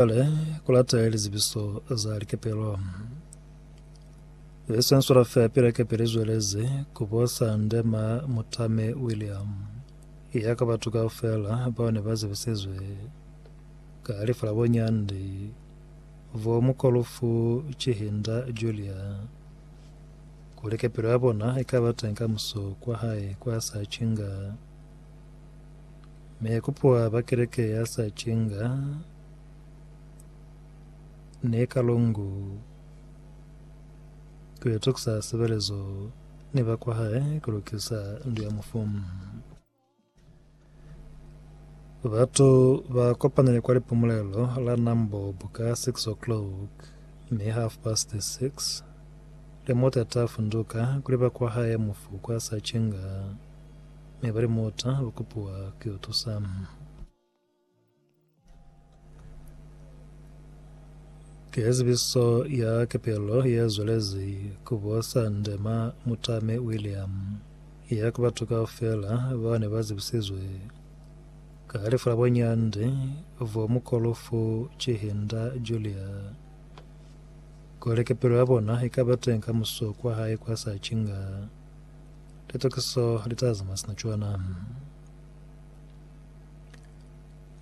Cwale, ku lata lizibiso za likepelo. Ye sensula fela pila kepe li zwelezi ku bosa ndema Mutame William, ya ka batu kaufela bao ne ba zibisizwe ka lifu la bo Nyandi vo Mukolufu Chihinda Julia, kuli kepelo ya bona i ka ba teñi kamuso kwa hae kwa sa cinga. Ne kupwa ba keleke ya sa cinga ne ka longu ku yo tukusa sebelezo ni ba kwa hae ku lukisa ndu ya mufu. Batu ba kopanile kwa lipumulelo la Nambo buka 6 o'clock ni half past 6 le motata funduka kuli ba kwa hae mufu kwa sa cinga. Mi bali, Muta lukupiwa ki utusa. Ki zibiso ya kepelo ye zwelezi ku bo Sande ma Muta mi William, ya ku batu kaufela bao ne ba zibisizwe ka halifa la bonyandi bo mukolufu Chihinda Julia, kuli kepelo ya bona ikaba teng ka muso kwa hae kwa Sachinga. Litokiso litazama sina cwana.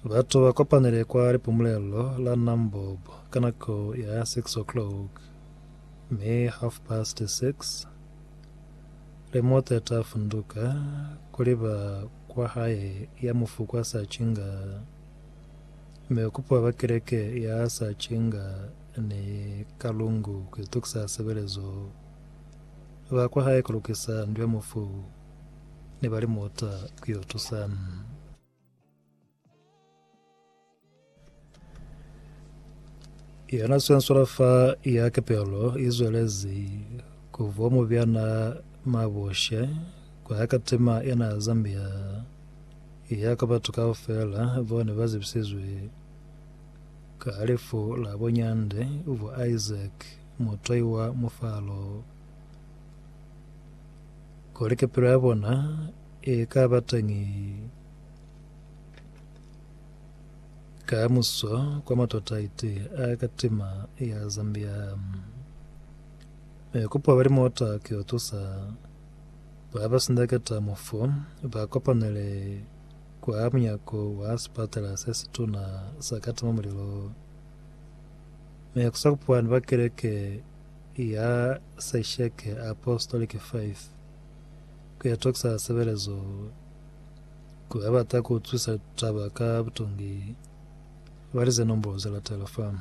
Batu bakopanile kwa lipumulelo la Nambob ka nako ya 6 o'clock mi half past 6 le mota ta funduka kuliba kwa hae ya mufu kwa Sachinga mi ukupuwa ba keleke ya Sachinga ni Kalungu kuitokisa sebelezo. Ba kwa hae ku lukisa ndu ya mufu ne ba li muta ku yo tusa. Yona swenswela fa ya kepelo i zwelezi ku vwa mubyana mabushe kwa ya katima ena ya Zambia ya kwa batu kaufela bao ne ba zibisizwe ka lifu la bunyande bwa Isaac Mutwai wa mufalo. Kuli kipilo ya bona i ka ba teñi kamuso kwa matata iti a katima ya Zambia, mi kupo bali mota ki yo tusa ba ba sindaketa mufu ba kopanele kwa munyako wa sipatela se situna sa katima mulilo. Mi ku sa kupuhani kwa Keleke ya Sesheke Apostolic Faith ku ya tokisa sebelezo ku ba bata ku utwisisa taba ka butongi, bali ze nombolo ze latela fani.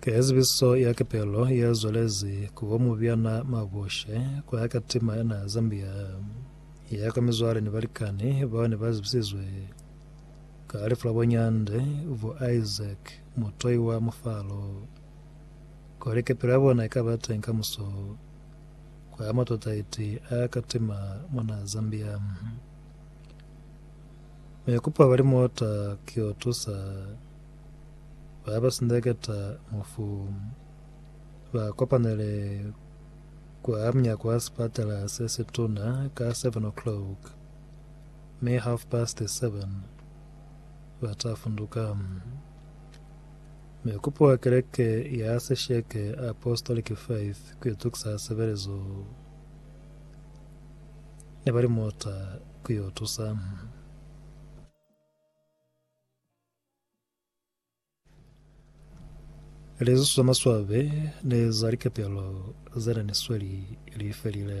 Ka ya zibiso ya Kepelo ya zwalezi ku bo Mubyana Mabushe ku ya ka tima ya naha Zambia, ya ka mizwale ni balikani bao ne ba zibisizwe ka lifu la bo Nyande, bo Isaac Mutoi wa Mufalo, kuli kepelo ya bona ika ba teng kamuso kwa matwataiti a ka tima mwa naha Zambia. Mi kupa bali muota ki yo tusa ba ba sindeketa mufu ba kopanele kwa mnyako wa sipatela se si tuna ka 7 o'clock, mi half past 7 ba ta funduka. Mi kupo wa keleke ya sesheke Apostolic Faith ku itukisa sebelezo. Ne ba li muta ku yo tusa. Lizusu za maswabe ne za likepelo ze ne ni sweli li felile.